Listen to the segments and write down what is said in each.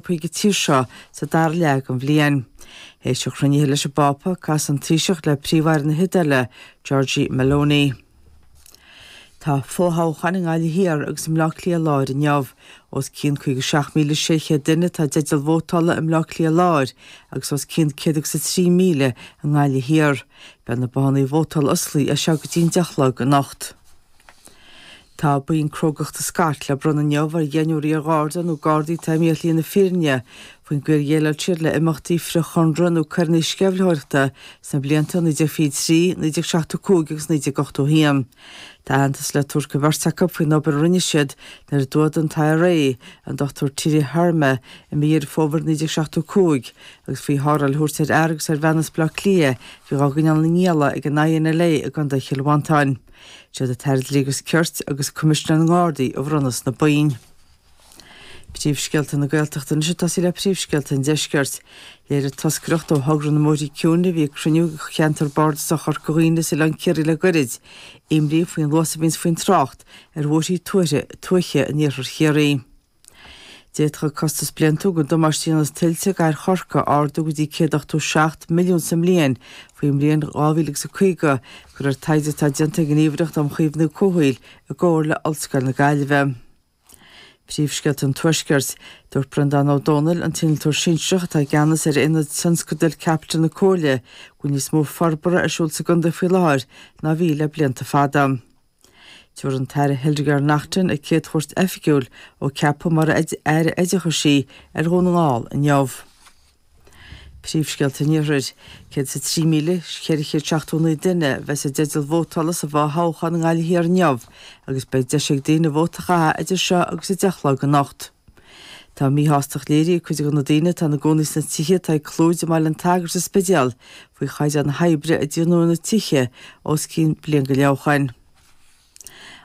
chuig an tír seo sa dara leath den bhliain. Théis an chruinnithe leis an bPápa, casfaidh an Taoiseach le Príomh-Aire na hIodáile, Giorgia Meloni. Tá fo-thoghcháin i nGaillimh Thiar agus i mBleá Cliath Láir inniu. Os cionn 57,600 duine atá i dteideal vótála i mBleá Cliath Láir agus os cionn 100 agus 3,000 i nGaillimh Thiar. Beidh na bothanna vótála osclaithe as seo go dtí'n deich a chlog anocht. Tá boinn crógachta Scott le bronnadh inniu ar dheichniúr iar-Gharda nó Gardaí atá imithe ar shlí na fírinne faoin gcaoi ar dhéileáil siad le imeachtaí frith-Chonradh nó coireanna sceimhlitheoireachta sna blianta 1923, 1975 agus 1981. Tá aitheantas le tabhairt do bheirt acu faoin obair a rinne siad nuair a d'fhuadaigh an t-IRA an Dr Tiede Herrema i mí Dheireadh Fómhair 1975 agus faoi tharrtháil a thabhairt ar fhear agus ar bhean as Bleá Cliath a bhí dhá gcoinneáil ina ngialla ag an INLA i gContae Chill Mhantáin. Siad an tAire Dlí agus Cirt agus Coimisinéir na nGardaí a bhronnfas na boinn. Príomhscéalta na Gaeltachta anois ag tosaí le príomhscéalta an Deiscirt. Léirigh toscaireacht ó thogra na mbóithre ciúine a bhí ag cruinniú de Cheantar Bardasach Chorca Dhuibhne is Oileán Ciarraí le goirid, imní faoin luas a bhíonns faoin trácht ar bhóithrí tuaithe in iarthar Chiarraí. D'fhéadfadh costas bliantúil an damáiste a dhéanas tuilte do chathair Chorcaí ardú go dtí 187 milliún sa mbliain faoin mbliain 2050, de réir taighde atá déanta ag an Ghníomhaireacht um Chaomhnú Comhshaoil i gcomhar le Ollscoil na Gaillimhe. Príomhscéalta an Tuaiscirt. Dúirt Breandán Ó Dónaill, an t-innealtóir sinsearach atá i gceannas ar Aonad Tionscadail Caipitil na Comhairle, go bhfuil níos mó forbartha ar siúl sa gcontae faoi láthair ná a bhí le blianta fada. Tabharfaidh an tAire Hildegarde Naughton a céad chuairt oifigiúil ó ceapadh mar Aire Oideachais í ar Dhún na nGall inniu. Príomhscéalta an Iarthair. 103,479 duine a bheas i dteideal vótála sa bhfo-thoghchán i nGaillimh Thiar inniu agus beidh deis ag daoine vóta a chaitheamh idir seo agus a 10 a chlog anocht. Tá míshástacht léirithe ag cuid de na daoine atá ina gcónaí sna tithe atá ag Clúid i mBaile an tSagairt sa Spidéal faoi chaighdeán na hoibre a déanadh ar na tithe os cionn bliain go leith ó shoin.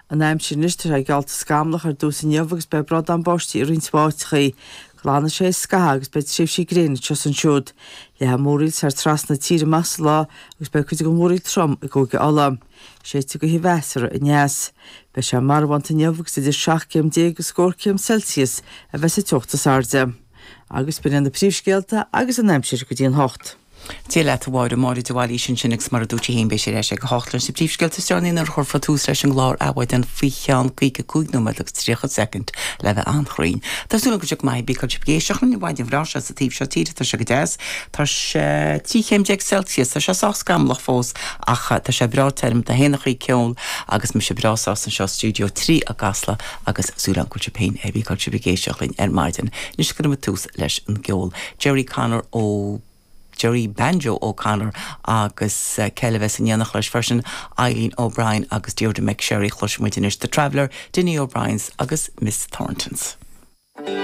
An aimsir anois, tá sé geallta scamallach ar dtús inniu agus beidh brádán báistí i roinnt áiteachaí. Glanfaidh sé théis scaitheamh agus beidh tréimhsí gréine anseo is ansiúd. Leathfaidh múraíl thar trasna na tíre amach sa lá agus beidh cuid den mhúraíl trom i gCúige Uladh. Séidfidh gaoth mheasartha aneas. Beidh sé marbhánta inniu agus idir seacht gcéim déag agus scór céim Celsius a bheas an teocht is airde. Agus b'in iad na príomhscéalta agus an aimsir go dtí an hocht. Dia leat, a Mháire, Máire de Bhailís ansin agus mar a dúirt sí féin beidh sí ar ais ag a hocht leis na príomhscéalta is deireanaí nuair a chuirfear tús leis an gclár Adhmhaidin faoi cheann caoga cúig nóiméad agus tríocha soicind le bheith an-chruinn. Tá súil agam go mbeidh tú ag éisteacht linn an mhaidin bhreá seo sa taobh seo tíre, tá sé go deas. Tá sé trí chéim déag Celsius, tá sé sách scamallach fós ach tá sé breá tirim. Dé hAoine Ardtráthnóna ceol agus mise breá sásta anseo i stiúideo trí i gCasla agus súil agam go bhfuil sibh féin cibé áit a bhfuil sibh ag éisteacht linn ar maidin. Anois cuirimid tús leis an gceol. Gerry Connor nó Gerry Banjo O'Connor agus cé a bheas in éineacht leis freisin, Eileen O'Brien agus Deirdre McSherry. Cloisimid anois The Traveller, Dinny O'Briens agus Miss Thorntons.